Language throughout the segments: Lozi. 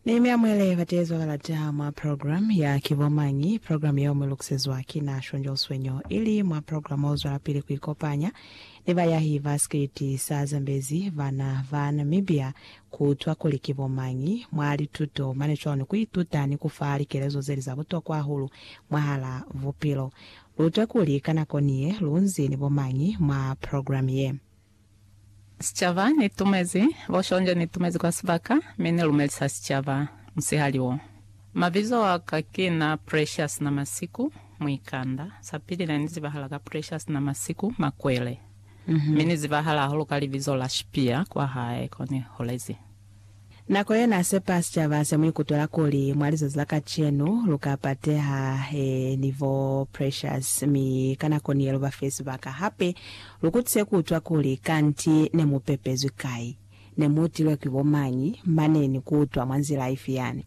Ni mi amuele bateezwa kalata mwa program ya Ki Bo Mañi? Program yeo mu lukusezwa ki na Shonjo Swenyo, ili mwa program o zwelapili ku ikopanya ni bayahi ba sikiliti sa Zambezi bana ba Namibia ku utwa kuli ki bo mañi mwa lituto mane cwalo ni ku ituta ni ku fa likelezo zeli za butokwa hahulu mwahala bupilo. Lu utwe kuli ka nako niye lu nzi ni bo mañi mwa program ye. Sicaba, Ni tumezi, bo Shonja, ni tumezi kwa sibaka, mi ni lumelisa sicaba, musihali wo. Mabizo a ka ki na Precious Namasiku, muikanda. Sa pili, ne ni zibahala ka Precious Namasiku, makwele. Mi ni zibahala hahulu ka libizo la Shipia, kwa hae ko ni holezi. Nako ye n'a sepa sicaba se mu ikutwela kuli mwa lizazi la kacenu lu ka pateha he ni bo Precious, mi ka nako ni ye lu ba fe sibaka hape lu kutise ku utwa kuli kanti ne mu pepezwi kai, ne mu utilwe ki bo mañi, mane ni ku utwa mwa nzila ifi yani.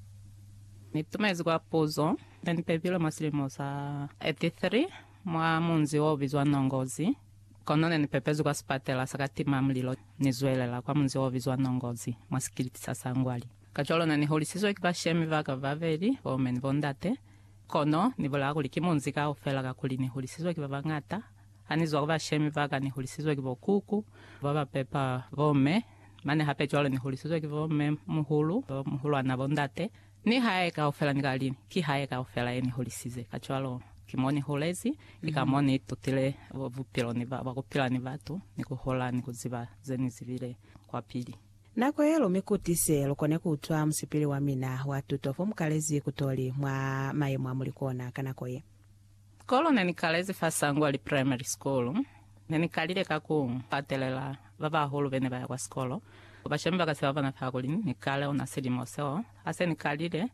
Ni tumezi kwa puzo ye ni pepilwe mwa silimo sa 83 mwa munzi o bizwa Nongozi. Kono ne ni pepezwi kwa sipatela sa ka tima mulilo, ni zwelela kwa munzi o bizwa Nongozi, mwa sikiliti sa Sangwali. Kacwalo ne ni holisizwe ki bashemi ba ka babeli, bo mme ni bo ndate. Kono ni bulaa kuli ki munzi kaufela kakuli ni holisizwe ki ba bañata. Ha ni zwa ku bashemi ba ka, ni holisizwe ki bo kuku ba ba pepa bo mme, mane hape cwalo ni holisizwe ki bo mme muhulu, bo muhulwana, bo ndate. Ni hae kaufela ni ka li, Ki hae kaufela ye ni hulisize. Kacwalo, ki mo ni hulezi, ki ka mo ni itutile bupilo ni ba, ku pila ni batu, ni ku hola, ni ku ziba ze ni zibile kwapili. Nako ye lu mi kutise, lu kone ku utwa musipili wa mina wa tuto fo mu kalezi ku to li mwa mayemo a mu li kona ka nako ye. Sikolo ne ni kalezi fa Sangwali Primary School, ne ni kalile ka ku katelela ba bahulu be ne ba ya kwa sikolo. Bashemi ba ka se ba bona fa kuli ni kale ona silimo seo. Ha se ni kalile,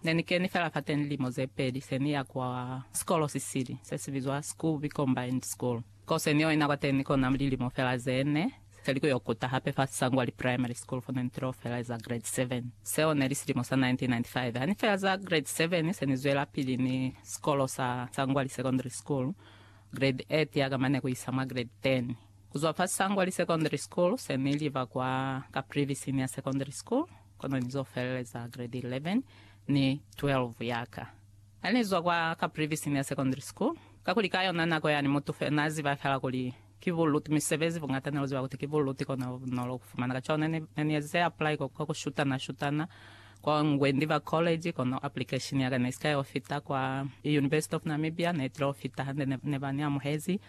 ne ni keni fela fateñi lilimo ze peli se ni ya kwa sikolo si sili, se si bizwa Skuby Combined School. Ko se ni yo ina kwateñi kona lilimo fela ze ne. Se li ku yo kuta hape fa Sangwali Primary School fo ne ni tilo feleza Grade 7. Seo ne li silimo sa 1995. Ha ni feleza Grade 7, se ni zwelapili ni sikolo sa Sangwali Secondary School, Grade 8 ya ka mane ku isa mwa Grade 10. Ku zwa fa Sangwali Secondary School, se ni liba kwa Caprivi Senior Secondary School, kono ni zo feleza Grade 11 ni 12 ya ka. Ha ni zwa kwa Caprivi Senior Secondary School, kakuli ka yona nako yani mutu fela n'a ziba fela kuli, Ki buluti misebezi buñata ne lu ziba kuti ki buluti ko ne lu nolo ku fumana. Kacwalo ne ni, ne ni ezize apply kwa, kwa ku shutana-shutana kwa ngwe ndi ba college, kono application ya ka ne i si ka yo fita kwa University of Namibia, ne i tile yo fita hande ne, ne ba ni amuhezi.